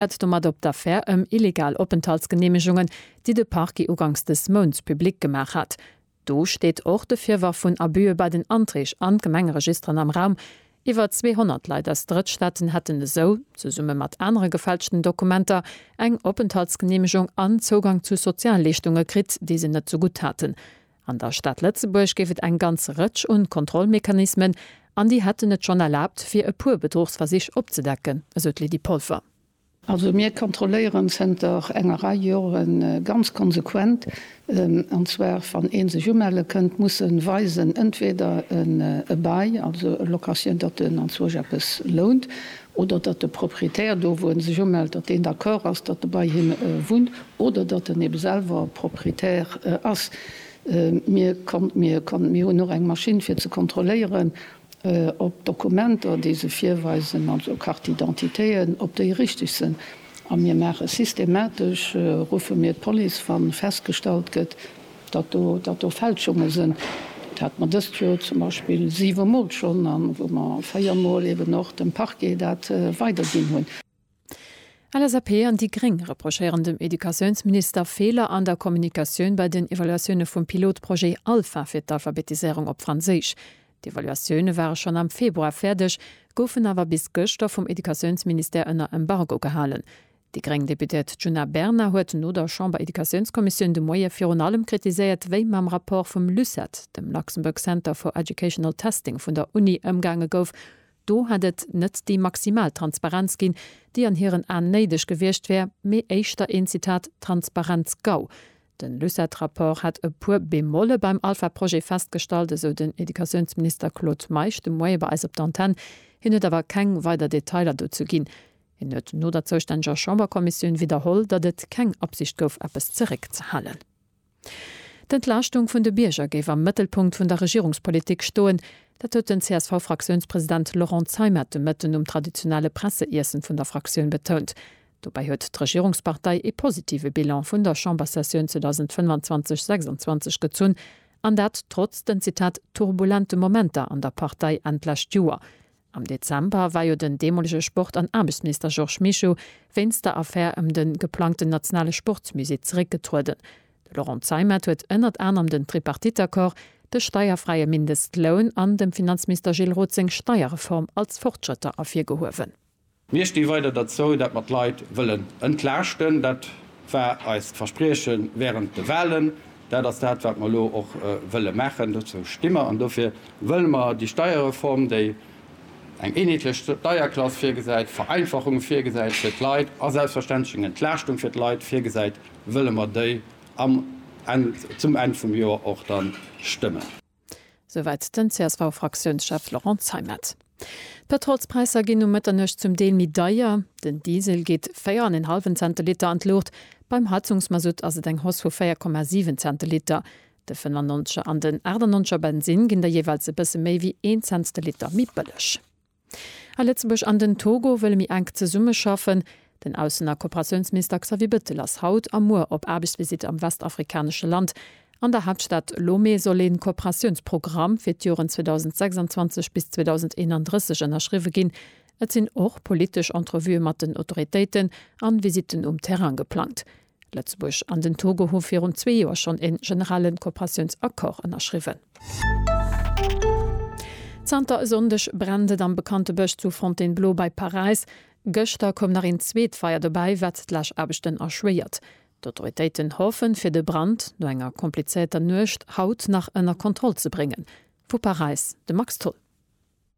et domat op d'Affär ëm illegal Openthaltsgeneemegungen, déi de Parquet uganks dës Mounts public gemaach hat. Do steet och de Virworf vun Abüe bei den Anträg an d'Gemengeregisteren am Raum. Iwwer 200 Leit aus Drëttstaaten hätten esou, zesumme mat anere gefälschten Dokumenter, eng Openthaltsgeneemegung an Zougang zu Sozialleeschtunge kritt, déi se net zegutt haten. An der Stad Lëtzebuerg géif et eng ganz Rëtsch un Kontrollmechanismen, an déi hätten et schonn erlaabt fir e puer Bedruchsversich opzedecken, esou d'Lydie Polfer. Also mir kontrolléieren zënter enger Rei Jore ganz konsequent, an zwar wann ee sech umelle kënnt, muss e weisen entweder e Bail, also e Locationndatten, an zwar sech eppes lount, oder datt de Propriétaire do, wou e sech umellt, datt deen d'accord ass, datt e bei him wunnt oder datt en ebe selwer Propriétaire ass. Mir konnt, mir konnt, mir hunn och eng Maschinn, fir ze kontrolléieren, ob d'Dokumenter, déi se virweisen, also Carte-d'identitéen, ob déi richteg sinn. A mir maache systematesch, ruffe mir d'Police, wa festgestallt gëtt, Datt do, datt do Fälschunge sënn, dat hat mer dëst Joer zum Beispill siwe Mol schonn, a wou mer véier Mol eben och dem Parquet dat weiderginn hunn. LSAP an déi gréng reprochéieren dem Educatiounsminister Feeler an der Kommunikatioun bei den Evaluatioune vum Pilotprojet Alpha fir d'Alphabetiséierung op Franséisch. D'Evaluatioune ware schonn am Februar fäerdeg, goufen awer bis gëschter vum Educatiounsministère ënner Embargo gehalen. Déi gréng Deputéiert Djuna Bernard huet no der Chamber-Educatiounskommissioun de Moie virun allem kritiséiert, wéi mam Rapport vum LUCET, dem Luxembourg Center for Educational Testing vun der Uni, ëmgaange gouf. Do hätt et net déi maximal Transparenz ginn, déi an hiren Aen néideg gewiescht wär, mee éischter een, Zitat, Transparenz-Gau. Den LUCET-Rapport hätt e puer Bemolle beim Alpha-Projet festgestallt, esou den Educatiounsminister Claude Meisch de Moie bei eis op d'Antenne. Hien huet awer keng weider Detailer dozou ginn. Hien huet no der zoustänneger Chamberkommissioun widderholl, datt et keng Absicht gouf, eppes zeréckzehalen. D'Entlaaschtung vun de Bierger géif am Mëttelpunkt vun der Regierungspolitik stoen. Dat huet den CSV-Fraktiounspresident Laurent Zeimet de Mëtten um traditionelle Presseiessen vun der Fraktioun betount. Dobäi huet d'Regierungspartei ee positive Bilan vun der Chamberssessioun 2025, 26 gezunn, an dat trotz den, Zitat, turbulente Momenter an der Partei Enn d'lescht Joer. Am Dezember war jo den deemolege Sport an Aarbechtsminister Georges Mischo wéinst der Affär ëm de geplangten nationale Sportsmusée zeréckgetrueden. De Laurent Zeimet huet ënnert anerem den Tripartite-Accord, de steierfräie Mindestloun an dem Finanzminister Gilles Roth seng Steierreform als Fortschrëtter ervirgehuewen. Mir sti weider derzou, dat mer d'Leit wëllen entlaaschten. Dat war eist Versprieche während de Wahlen. Dat ass dat, wat mer elo och wëlle maachen. Dozou sti mer an dofir wëlle mer déi Steierreform, déi eng eenheetlech Steierklass virgesäit, Vereinfachunge virgesäit fir d'Leit a selbstverständlech eng Entlaaschtung fir d'Leit virgesäit, wëlle mer déi zum Enn vum Joer och da stëmmen. Souwäit den CSV-Fraktiounschef Laurent Zeimet. D'Pëtrolspräisser ginn no Mëtternuecht zum Deel méi deier. Den Diesel geet véier an een hallwen Cent de Liter an d'Luucht. Beim Heizungsmasutt ass et eng Hausse vu 4,7 Cent de Liter. De 95er an den 98er Bensinn ginn da jeeweils e bësse méi wéi een Cent de Liter méi bëlleg. A Lëtzebuerg an den Togo wëlle méi enk zesummeschaffen. Den Aussen a Kooperatiounsminister Xavier Bettel ass haut a muer op Aarbechtsvisitt am westafrikanesche Land. An der Haaptstad Lomé soll ee Kooperatiounsprogramm fir d'Joren 2026 bis 2031 ënnerschriwwe ginn. Et sinn och politesch Entrevuë mat den Autoritéiten an Visitten um Terrain geplangt. Lëtzebuerg an den Togo hu virun zwee Joer schonn e generelle Kooperatiounsaccord ënnerschriwwen. Zanter e Sonndeg brennt et am bekannte Bësch zu Fontainebleau bei Paräis. Gëschter koum nach een zweet Feier dobäi, wat d'Läschaarbechten erschwéiert. D'Autoritéiten hoffen, fir de Brand no enger komplizéierter Nuecht haut nach ënner Kontroll ze bréngen. Vu Paräis de Max Tholl.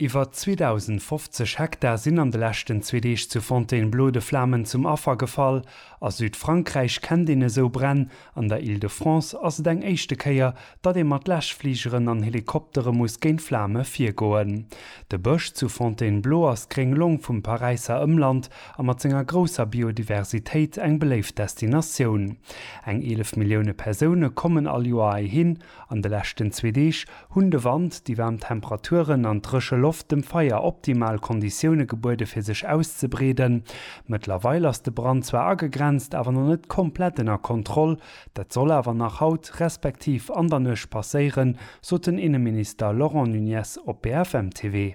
Iwwer 2.050 Hektar sinn an de leschten zwee Deeg zu Fontainebleau de Flamen zum Affer gefall. A Südfrankräich kennt een esou Bränn. An der Île-de-France ass et eng éischte Kéier, datt ee mat Läschfligeren an Helikoptere muss géint d'Flame virgoen. De Bësch zu Fontainebleau ass d'gréng Long vum Paräisser Ëmland a mat senger grousser Biodiversitéit eng beléift Destinatioun. Eng 11 Millioune Persoune kommen all Joer heihin. An de leschten zwee Deeg hunn de Wand, déi waarm Temperaturen an d'dréche Loft dem Feier optimal Konditioune gebuede fir sech auszebreeden. Mëttlerweil ass de Brand zwar agegrenzt, awer nach net komplett ënner Kontroll. Dat soll awer nach haut, respektiv an der Nuecht passéieren, sot den Inneminister Laurent Nunez op BFM TV.